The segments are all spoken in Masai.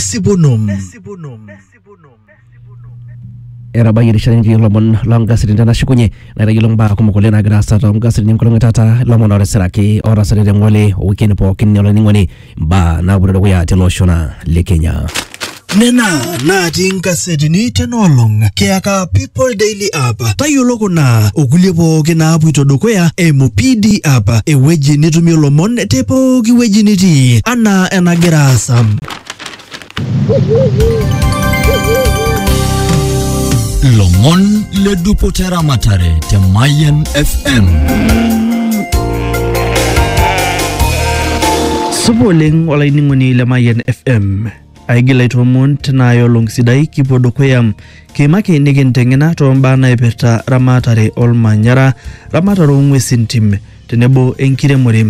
Sibunum. etabayie erishata nikitii ilomon loongasetini tenashukunye naitayiolo mbaa kumok oleng naagira aasa toongasetini enkolong e taata ilomon ootisiraki ootasate te ng'ole owikini pookin olainining'oni mbaa naapuoito dukuya tele osho naa le Kenya. Nena natii inkasetini tenaolong kiyaka People Daily App tayiolo kuna okulie pooki naapuito dukuya eimu PD App ewueji nitumie ilomon te pooki wueji nitii anaa enagira aasa. lomon le dupoto ramatare te mayen fm supa oleng olainining'oni le mayian fm aigil aitoomon tinaaya olong sidai kipuo dukuya kiimaki nikinteng'ena toombaa naipirta ramatare olmanyara ramatare oong'uesin tim tenebo enkiremore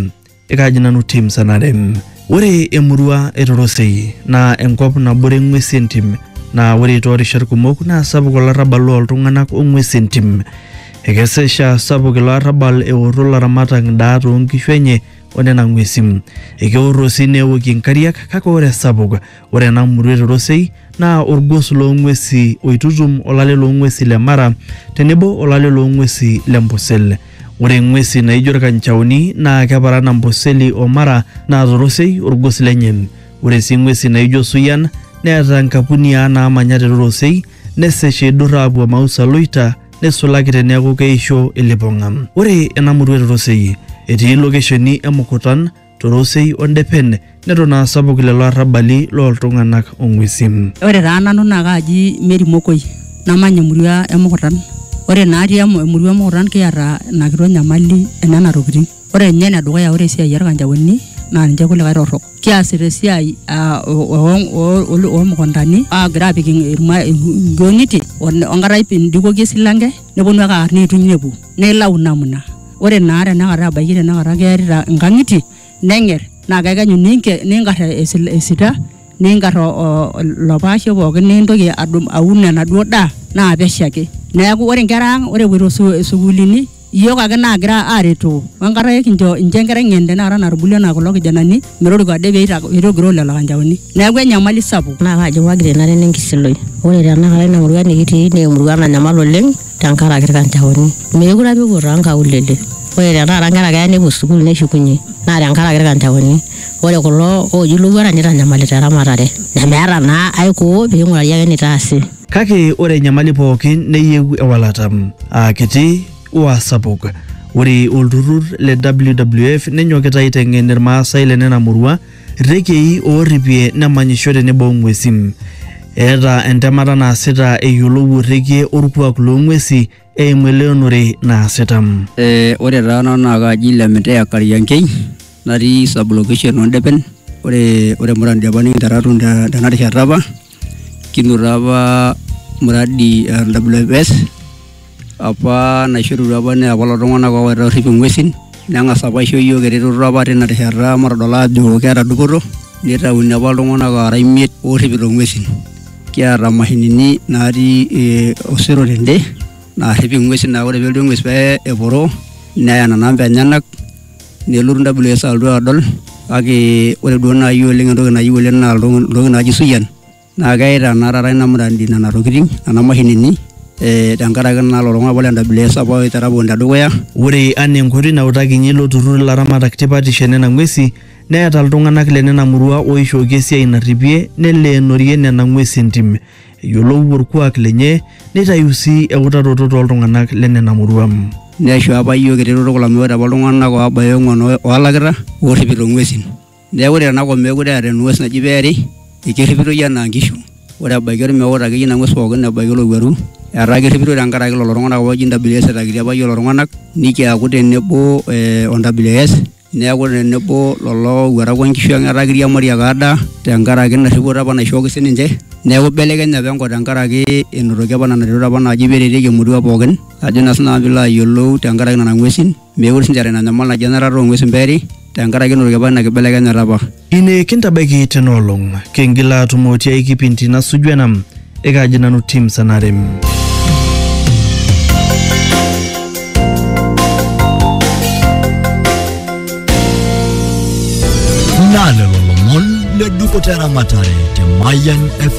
Ekaji nanu tim sanarem. Ore emurua e Torosei naa enkop nabore ng'wesi entim naa ore toorishat kumok naa sapuk olarrabal looltung'anak o ng'wesi entim. Ekesesha sapuk ilo arrabal eorro ilaramatak ndaa too nkishu enye o nena ng'wesi. Ekeorro sii neokie nkariak kake ore esapuk Ore ena murua e Torosei naa orgos loo ng'uesi oitutum olale loo ng'uesi le Mara tenebo olale loo ng'uesi le Mbosel. Ore ng'uesi naijo irkanchaoni naa keparan Amboseli o Mara naa Torosei orgos lenye. Ore sii ng'uesi naijo Osuyian neeta nkapuniaa naamanya te Torosei nesesh eidur aapuo Emausa Loita neisulaki teneeku keisho ilipong'a. Ore ena murua e Torosei etii lokesheni e Mukutan, Torosei o Ndepen neton aa sapuk lelo arrabali loo ltung'anak o ng'uesin. Ore taa nanu naa kaaji Mary Mokoi namany emurua e Mukutan. Ore naa atii emurua e Mukutan kiata ina kitok nyamali e nena tokitin. Ore ninye ene dukuya ore esiai oo lkanjaoni naa ninche kulikae torrok. Kiasita esiai aa oo mukuntani aagira aapik ilng'ang'itie o nkata pee indikoki esilanke nepwonu ake aar neituny nepwo nilau namna. Ore naa tenakata abaiki tenakata kearita inkang'itie neng'er naa kekenyu ninke- ninkar esil- esita ninkar o- o- ilopaashe pookin nintoki adum aun enaduo daa naa pesho ake. Neaku ore nkera ang' ore epuoito su- sukuulini iyiook ake naagira aaretoo o enkata ake kincho incho enkerai ng'en tenakata natubulua anaa kulo kijanani. metoriko ade pee eita- eitogiroo lelo kanjaoni neeku enyamali sapuk naa kaji wagira ina rene enkisiloi ore tenakata ina murua nikitii naa emurua nanyamal oleng tenkaraki irkanjaoni meekure apa epuo toonkaulele ore tenakata inkera keya nepuo sukuul neshukunye naa tenkaraki irkanjaoni ore kulo ooji ilowuarak nitanyamalita eramatare nemeeta naa aikoo ping'urari ake enitaasi Kake ore enyamali pookin neyieu ewalata. Aa kiti waa sapuk. Ore olturrur le WWF nenyokita aiteng'en Irmaasai le nena murua irrekiei oorripie nemanyisho tenebo ng'uesin. Eeta entemata naasita eyiolou orrekie orkuak loo ng'uesi eimu eleonore naasita. Eh, ore taa nanu naa kaaji Lemitea Kariankei natii sub location oo Ndepen. Ore, ore Murrant Depani kinterra atum tena rishata apa kinoto apa mradi e WFS apa naishorutua apa naa kulo tung'anak oowaita orrip ing'uesin neng'as apa aisho iyiook eretoto apa tina rishata matodol aajo keeta dupoto nitauni apa iltung'anak oora imiet oorripito ing'uesin kiata imashinini naatii eh, osero tende naarrip ing'uesin naa ore pelotu eng'ues pee eporo neya nena amba enyenak. nelotu WS alotu adol kake ore duo naaji oleng entoki nayieu oleng naa iltoki- iltoki naaji suyian naa keita naa taata ina muradi nena tokitin nena mashinini eh, tenkaraki naa lelo tung'anak apa le WS apa oitera pookin tedukuya Ore anaa enkoitoi nautakinye ilo turrur ilaramatak tipatisho e nena ng'uesi neeta iltung'anak le nena murua ooishooki esiai narripie neleenorie nena ng'uesi entim. eyiolou orkuak lenye neitayu sii eutaroto tooltung'anak lenena murua. Neisho apa iyiook eretoto kulo amu ore apa iltung'anak oobaya ong'uan oolakita oorripito ng'uesin. Neeku ore tenakop meekure eeta eng'ues naji peeri ekerripitoi enaa nkishu. Ore ebaiki ormeut akeyie ina ng'ues pooki ebaiki olowuaru etaa kerripitoi tenkaraki lelo tung'anak apa ooji NWS etakitia apa iyiook lelo tung'anak nikiaku tenebo o NWS neaku tenebo lolo owuarak onkishu ang etaa kiriamari ake adaa tenkaraki ina rripoto apa naishooki sininche neaku ibelekenye apa enkop tenkaraki enotoki apa nena retot apa naaji peretieki emurua pookin ajo naa sinanu piilo ayiolou tenkaraki nana ng'uesin mekure sinche eeta ina nyamal naji enarata ong'uesin peeri tenkaraki enotoki apa ina kibelekenyata apa. Ine kintabaiki tena olong. Kingila atumo tiai kipindi nasuju ena. Ekaaji nanu Tim Sanare. Naa lelo lomon le dupoto eramatare te Mayian FM.